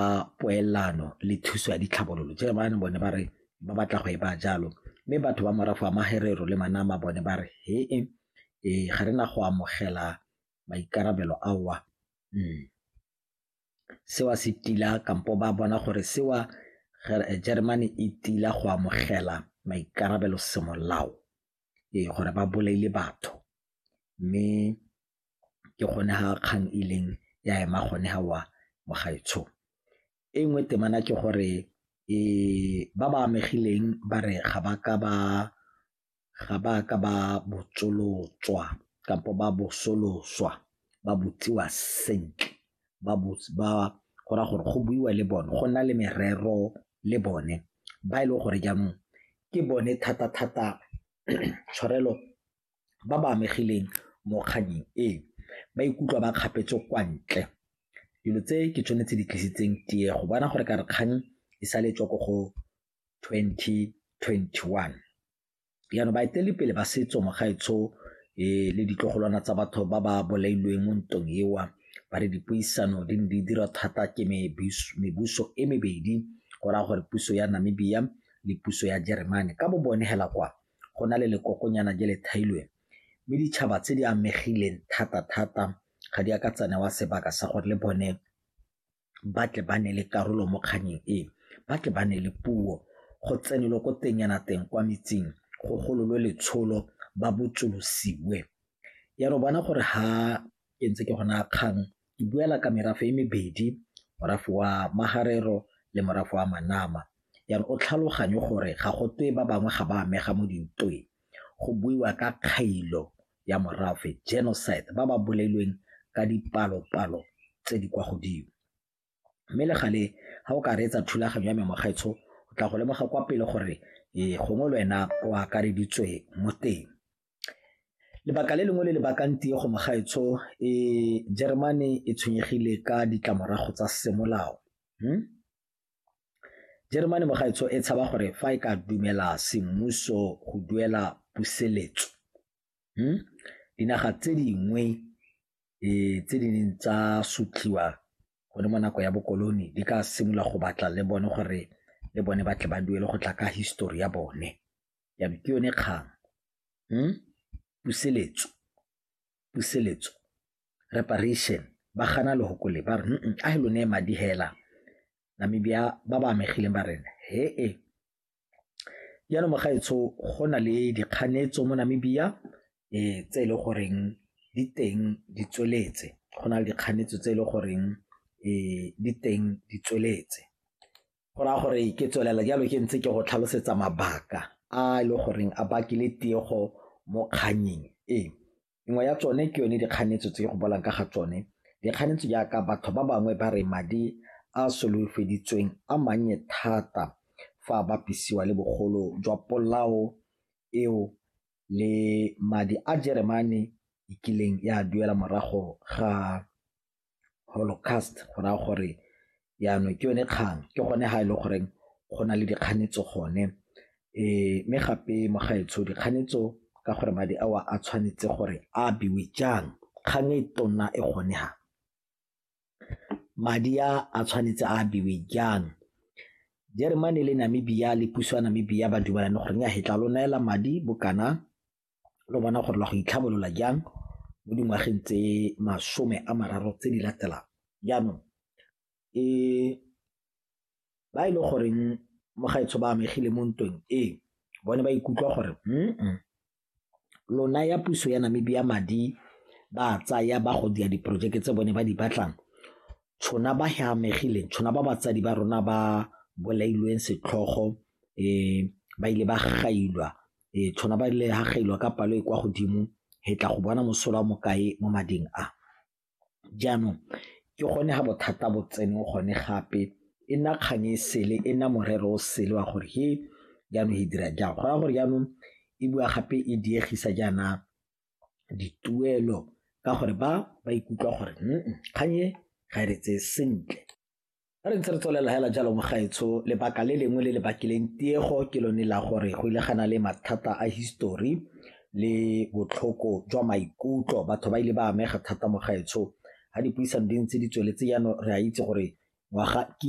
ba poelano le thuso ya ditlhabololo jalo ba bone ba re ba batla go e ba jalo mme batho ba morafe wa Maherero le Manama bone ba re he e ga re na go amogela maikarabelo ao a hmm. sewa se tila kampo ba bona gore sewa Germany e tila go amogela maikarabelo semolao ee gore ba bolaile batho mme ke gone ga kgang e leng ya ema gone ga wa mogaetsho. E nngwe temana ke gore ba ba amegileng ba re ga ba ka ba ga ba ka ba botsolotswa kampo ba bosoloswa ba botsiwa sentle ba go raya gore go buiwa le bone go nna le merero le bone ba e leng gore jaanong ke bone thata-thata tshwarelo ba ba amegileng mo kgannyeng e ba ikutlwa ba kgapetswe kwa ntle dilo tse ke tsone tse di tlisitseng tie go bona gore ka re kgang e sa letswa ko go 2021 jaanong baeteledipele ba setso mogaetsho e le ditlogolwana tsa batho ba ba bolailweng mo ntong ewa ba re dipuisano di ne di dira thata ke mebuso e mebedi go raya gore puso ya namibia le puso ya jeremane ka bo bone hela kwa go na le lekokonyana je le thailweng mme ditšhaba tse di amegileng thata-thata ga di a ka tsa newa sebaka sa gore le bone ba tle ba ne le karolo mo kganyeng e, ba tle ba ne le puo go tsenelwe ko teng yana teng kwa metsing go gololwe letsholo ba botsolosiwe ya re bona gore ha ke ntse ke gona kgang e buela ka merafe e mebedi, morafe wa Maharero le morafe wa Manama. Jaana o tlhaloganye gore ga go twe ba bangwe ga ba amega mo dintweng. Go buiwa ka kgailo ya morafe, genocide, ba ba bolailweng ka dipalo-palo tse di kwa godimo. Mme le gale ga o ka reetsa thulaganyo ya me Mokgweetsho, o tla go lemoga kwa pele gore gongwe le wena o akareditswe mo teng. Lebaka le lengwe le le bakang tiego mo gaetsho e Jeremane e tshwenyegile ka ditlamorago tsa semolao. Hmm? Jeremane mo gaetsho e tshaba gore fa e ka dumela semmuso go duela puseletso. Hmm? Dinaga tse dingwe eh, tse di neng tsa sutliwa gone mo nako ya bokoloni di ka simolola go batla le bone gore le bone batle ba duele go tla ka histori ya bone. ya be ke yone kgang hmm? puseletso puseletso reparation ba gana lehoko le ba re a he lone madi hela namibia ba ba amegileng ba rena he e jaanong mogaetsho go na le dikganetso mo namibia um tse e le goreng di teng di tsweletse go na le dikganetso tse e le goreng um di teng di tsweletse go raya gore ke tswelela jalo ke ntse ke go tlhalosetsa mabaka a e le goreng a bakile tiego mo kganyeng e nngwe ya tsone ke yone dikganetso tse go bolang ka ga tsone dikganetso jaaka batho ba bangwe ba re madi a solofeditsweng a mannye thata fa a bapisiwa le bogolo jwa polao eo le madi a jeremane e kileng ya duela morago ga holocaust go raya gore jaanong ke yone kgang ke gone ga e le goreng go na le dikganetso gone. Mme gape mo gaetsho dikganetso ka gore madi ao a tshwanetse gore a abiwe jang kgang e tona e gone fa, madi a a tshwanetse a abiwe jang. Jeremane le Namibia le puso ya Namibia ba dumalane gore nnyaa fa tla lo neela madi bo kana lo bona gore la go itlhabolola jang mo dingwageng tse masome a mararo tse di latelang jaanong e ba e le goreng mo gaetsho ba amegile mo ntweng e bone ba ikutlwa gore mm lona ya puso ya namibia madi ba tsaya ba go dia diporojeke tse bone ba di batlang tshona ba he amegileng tshona ba batsadi ba rona ba bolailweng setlhogo um ba ile ba gailwa Ee, tshona ba le hagailwa ka palo e kwa godimo he tla go bona mosola wa mokae mo mading a. Jaanong ke gone ga bothata bo tsene gone gape e nna kgang e sele e nna morero o sele wa gore he jaanong e dira jang go raya gore jaanong e bua gape e diegisa jaana dituelo ka gore ba ba ikutlwa gore kgang e ga e re tseye sentle. Re ntse re tswelela hela jalo mogaetsho lebaka le lengwe le le bakileng tiego ke lone la gore go ile gana le mathata a history le botlhoko jwa maikutlo batho ba ile ba amega thata mogaetsho ga dipuisano di ntse di tsweletse jaanong re a itse gore ngwaga ke